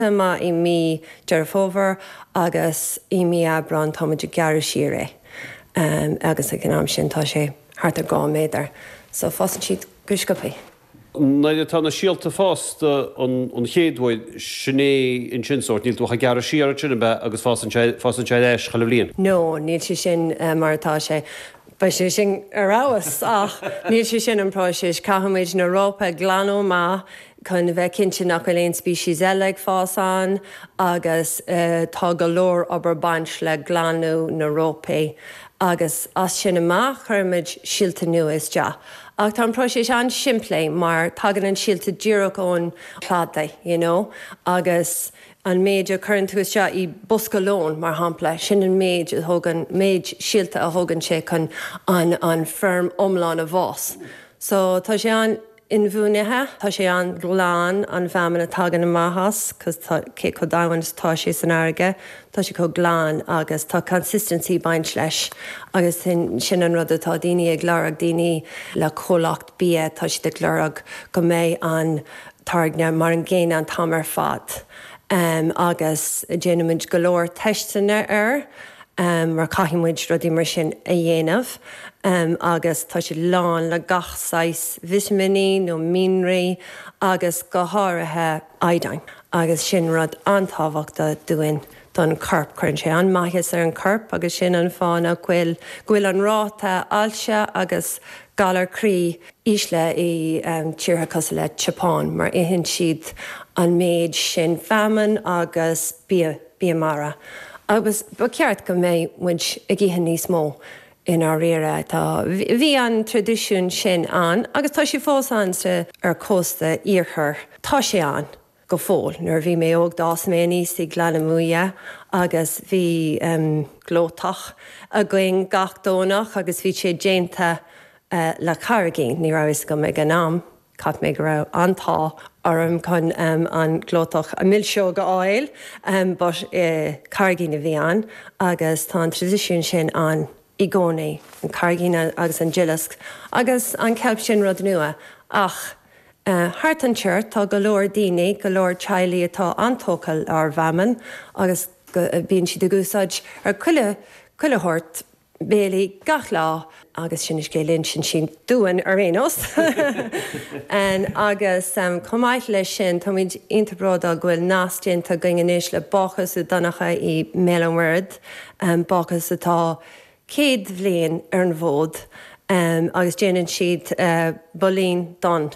Chomh maith i mí Deireadh Fómhair agus i mí Aibreáin tá muid á ghearradh siar é agus ag an am sin tá sé thart ar dhá méadar so fásann siad go sciobthaí. Nuair atá na síolta fásta an chéad uair, sin é ansin sórt, níl tú ach ag gearradh siar ansin ab ea agus fásann sé, fásann sé ar ais chuile bhliain? No, níl sé sin mar atá sé, beidh sé sin ar fheabhas ach níl sé sin an próiseas, caithfimid na rópa a ghlanadh amach chun a bheith cinnte nach bhfuil aon species eile ag fás ann agus tá go leor obair baint le glanadh na rópaí agus as sin amach cuirimid síolta nua isteach ach tá an próiseas an-simplí mar tagann an síolta díreach ón chladaigh you know agus an méid a cuireann tú isteach i bosca lóin mar shampla sin an méid a thógann méid síolta a thógann sé chun an an feirm iomlán a fhás so tá sé an inbhuanaithe. Tá sé an-ghlan, an feamainn a thagann amach as, cos tá, cé chomh domhain is atá sé san fharraige, tá sé chomh glan agus tá consistency baint leis agus sin, sin an rud atá daoine ag lorg, daoine le comhlacht bia, tá siad ag lorg go mbeidh an táirge mar an gcéanna an t-am ar fad. Agus déanaimid go leor teisteanna air. em mar caithfidh muid rudaí mar sin a dhéanamh em agus tá siad lán le gach saghas vitiminí nó mianraí agus go háirithe iodine agus sin rud an-tábhachtach dúinn don corp, cuireann sé an-maitheas ar an corp agus sin an fáth nach bhfuil go bhfuil an ráta ailse agus galar croí íseal i em tíortha cosúil le tSeapáin mar itheann siad an méid sin feamainn agus bia Bia Mara. Agus ba cheart go mbeidh muid ag ithe níos mó, i ndáiríre. Tá, bhí an traidisiún sin ann agus tá sé fós ann sa, ar chósta iarthar, tá sé ann go fóill. Nuair a bhí mé óg d'fhás mé aníos i nGleann na Muaidhe agus bhí em glóthach againn gach Domhnach agus bhí sé déanta eh le carraigín, ní raibh a fhios agam ag an am, Cheap mé go raibh an-t-ádh orm chun an glóthach milseog a fháil but ba é carraigín a bhí ann agus tá an traidisiún sin ann i gcónaí, an carraigín agus an duileasc agus an ceilp sin rud nua ach thart anseo tá go leor daoine, go leor teaghlaigh atá an-tógtha lenár bhfeamainn agus bíonn siad ag úsáid chuile shórt. béilí gach lá agus sin an scéal a insíonn siad dúinn ar aon nós. Agus chomh maith leis sin, táimid iontach bródúil go bhfuil nasc déanta againn anois le Bácús Uí Dhonncha i mBéal an Mhuirthead, bácús atá céad bhliain ar an bhfód agus déanann siad builín donn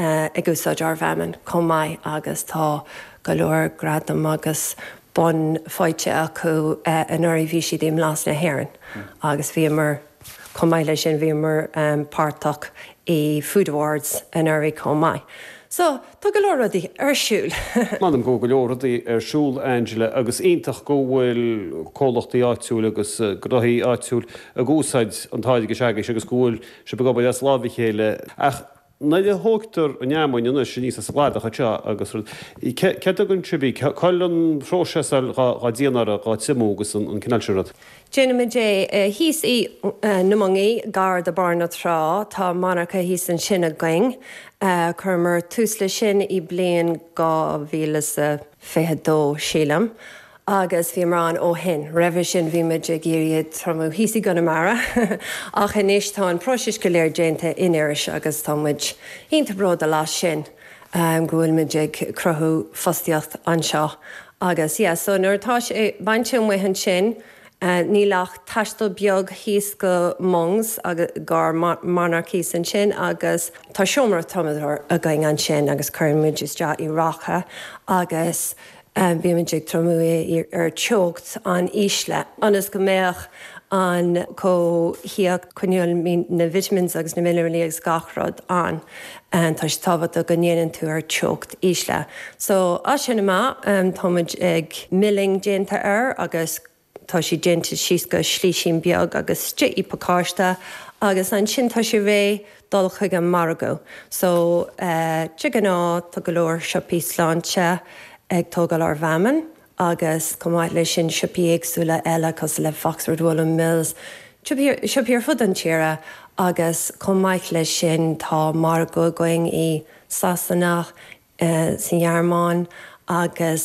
ag úsáid ár bhfeamainn chomh maith agus tá go leor gradam agus bonn faighte acu. Anuraidh bhí siad i mBlas na hÉireann agus bhíomar, chomh maith leis sin, bhíomar páirteach i Food Awards anuraidh chomh maith. So, tá go leor rudaí ar siúl! M'anam go bhfuil go leor rudaí ar siúl, a Angela, agus iontach go bhfuil comhlachtaí áitiúla agus gnóthaí áitiúla ag úsáid an táirge s'agaibhse agus go bhfuil sibh ag obair as lámh a chéile. Ach Nuair a thógtar an fheamainn anois aníos as an gcladach anseo agus rud, cá dtéann sibh, cá bhfuil an phróiseáil dhá déanamh uirthi, dhá triomú agus an cineál sin rud. Déanaimid é thíos sna Moingí, gar do Bharr na Trá, tá monarcha thíos ansin againn. Chuireamar tús leis sin i mbliain 2022, sílim. agus bhíomar ann ó shin, roimhe sin bhí muid ag iarraidh iad triomú thíos i gConamara ach anois tá an próiseas go léir déanta in Iorras agus tá muid iontach bródúil as sin go bhfuil muid ag cruthú fostaíocht anseo agus yeah so nuair atá sé bainte amuigh ansin níl ach taisteal beag thíos go Muings go dtí ár monarcha thíos ansin agus tá seomra triomadóir againn ansin agus cuireann muid isteach i raca agus Bímid ag triomú ar teocht an-íseal ionas go mbeadh an cothaíocht, coinneáil na vitamins agus na minearalaí agus gach rud ann. Tá sé tábhachtach go ndéanann tú ar teocht íseal. So as sin amach tá an milling déanta air agus Tá sé déanta síos go slísín beag agus isteach i pacáiste agus ansin tá sé réidh dul chuig an margadh. So de ghnáth tá go leor siopaí sláinte ag tógáil ár bhfeamainn agus chomh maith leis sin siopaí éagsúla eile cosúil le Foxford Woollen Mills, siopaí ar fud an tíre agus chomh maith leis sin tá margadh againn i Sasana, sa nGearmáin agus.